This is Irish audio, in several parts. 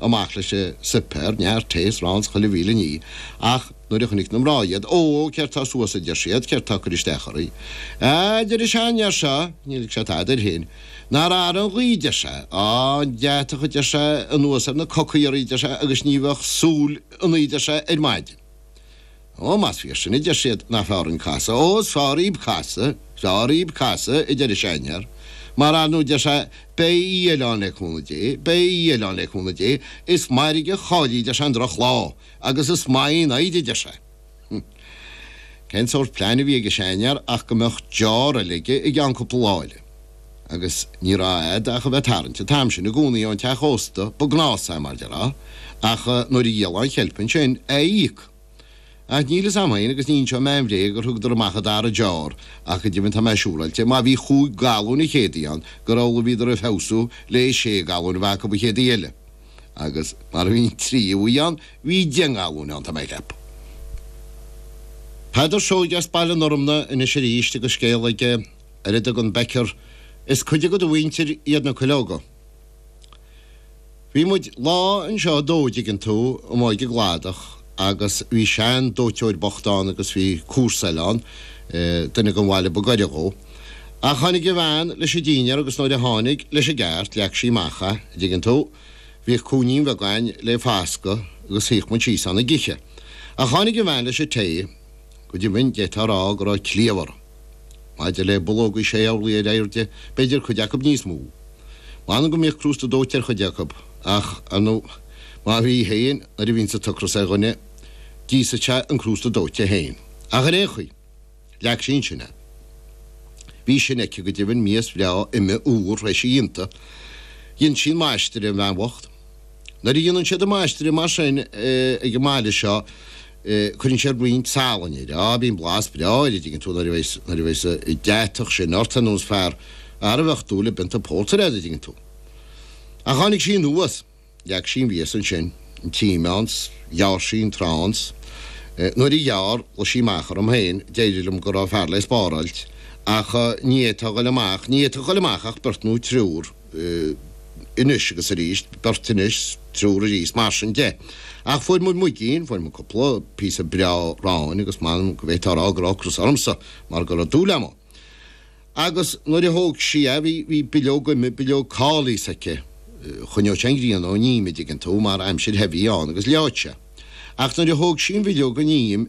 amach leis an suipéar, neart tae is arán is chuile mhíle ní, ach nuair a chonaic na mná iad, Ó, céard tá suas, a deir siad, céard tá, ag cur isteach oraibh. Á, deir a sean fhear seo, níl ag sé tada air féin, nár ardaigh an ghaoth, deir sé, á, an deatach, a deir sé, anuas ar na cocaí oraibh, deir sé, agus ní bheadh súil ionaí, deir sé, ar maidin. Ó, má b'fhíor sin, a deir siad, nach feárr an casadh, ó, slán raibh casadh, slán raibh casadh, a deir an seiñear, mar a nó deir sé, beidh Aodh eile ann le cúnamh Dé, beidh Aodh eile ann le cúnamh Dé, is mairg a cháiligh, deir sé, an droch lá, agus is maith an fhoighid, a deir sé. Hm. Cén sórt pleain a bhí ag an seiñear ach go mbeadh deór eile aige i gceann cúpla lá eile. agus ní raibh agat ach a bheith tarraingt an t-am sin i gcónaí ón teach ósta, ba gnás é, mar a déarfá, ach nuair a dhíolfaí an cheilp ansin, é a íoc. Ach níl fhios a'm féin agus ní inseoidh mé an bhréag gur thugadar amach an dara deoir, ach go deimhin tá mé siúráilte má bhí chúig galúin an chéad uair ann gur amhlaidh bhíodar a' feabhsú le haghaidh sé galúin a bheith acub an chéad uair eile. Agus mar a bhí an tríú huair ann, bhí deich ngalúin ann tá mé ag ceapadh. Peadar Seoighe as Baile an Fhorma anois aríst agus scéal aige. ar a dtugann Peadar, is cuid de do mhuintir iad na cuileoga. Bhí muid lá anseo a dó, dtuigeann tú, amuigh i gcladach agus bhí sean dóiteoir bocht ann agus bhí comharsa eile ann, duine den bhaile ba gaire dhó. Ach tháinig a bhean leis an dínnéar agus nuair a tháinig, leis an gceart, leag sí amach é, dtuigeann tú, bhíodh cúinnín bheag ann le fascadh agus shuíodh muid síos ann ag ithe. Ach tháinig a bhean leis an tae, go deimhin d'fhéadfá a rá go raibh cliabh aráin. Maidir le bulóg is é an méid sin ar airde, b'fhéidir cuid acu níos mó. M'anam go mbíodh crústa dóite ar chuid acu, ach ar ndóigh, má bhí féin, nuair a bhíonns an t-ocras ar dhuine, d'íosfadh sé an crústa dóite féin. Ach ar aon chaoi, leag sí ansin é. Bhí sin aici go deimhin, mias bhreá, ime, úr, th'éis a dhéanta. Dhein sí an maistreadh an bhean bhocht. Nuair a dhéanann siad an maistreadh mar sin ag an mbaile seo, Cuireann siad broinn salainn air. Á, bíonn blas breá air, a dtuigeann tú, nuair a bheidh, nuair a bheidh sa, deatach sin ort, ar nós fear a bheadh dúil le pionta pórtair air, a dtuigeann tú. Ach tháinig sí anuas. Leag sí an mhias ansin, an t-im ann, 's ghearr sí an t-arán, 's nuair a ghearr, ghlaoigh sí amach orm féin, d'eile liom go raibh fear le spáráilt, ach ní fhéadfadh a dhul amach, ní fhéadfadh a dhul amach ach beirt nó triúr. eh, anois agus arís, beirt anois 's triúr arís, mar sin de. Ach fuair muid muigín, fuair muid cúpla píosa breá aráin agus m'anam go bhféadfá a rá go raibh ocras ormsa mar go raibh dúil agam ann. Agus nuair a thóg sí a, bhí, bhí bileog ime, bileog cóilis aici. Eh, choinneodh sé an ghrian ón im, a dtuigeann tú, mar aimsir the a bhí ann agus leáfadh sé. Ach nuair a thóg sí an bhileog ón im,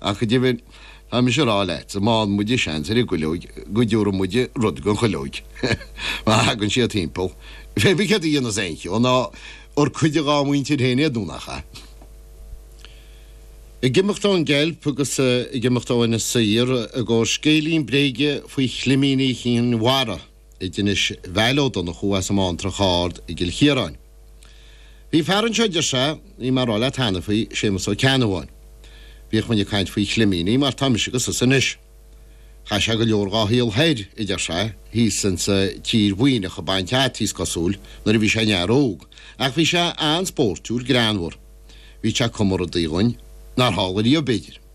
Ach go deimhin, tá mise ag rá leatsa, má fhaigheann muide seans ar an gcuileog, go dtiúrfaidh muide rud don chuileog. Má thagann siad timpeall, féadfaidh siad a dhéanamh as aon cheo, ná ar cuid dhá mhuintir féin iad nó nach ea? Ag imeacht ón gceilp agus ag imeacht ó Inis Oírr i gcomhair scéilín bréige faoi chlimíní Chinn Mhara. anois Vail Ó Donnchú as an mBantrach Ard i gCill Chiaráin. Bhí fear anseo a deir sé, bhí mé ag rá leat cheana faoi, Séamus Ó Ceannabháin. Bhíodh muinn ag caint faoi chlimíní mar tá mise agus tusa anois. Chaith sé go leor dhá shaol thoir a deir sé, thíos insa tír Mhuimhneach ag baint fhataí is cosúil, nuair a bhí sé ina fhear óg. Ach bhí sé an-spóirtiúil, greannmhar. Bhíodh sé ag cumadh rudaí dhúinn nár tharla riamh b'fhéidir.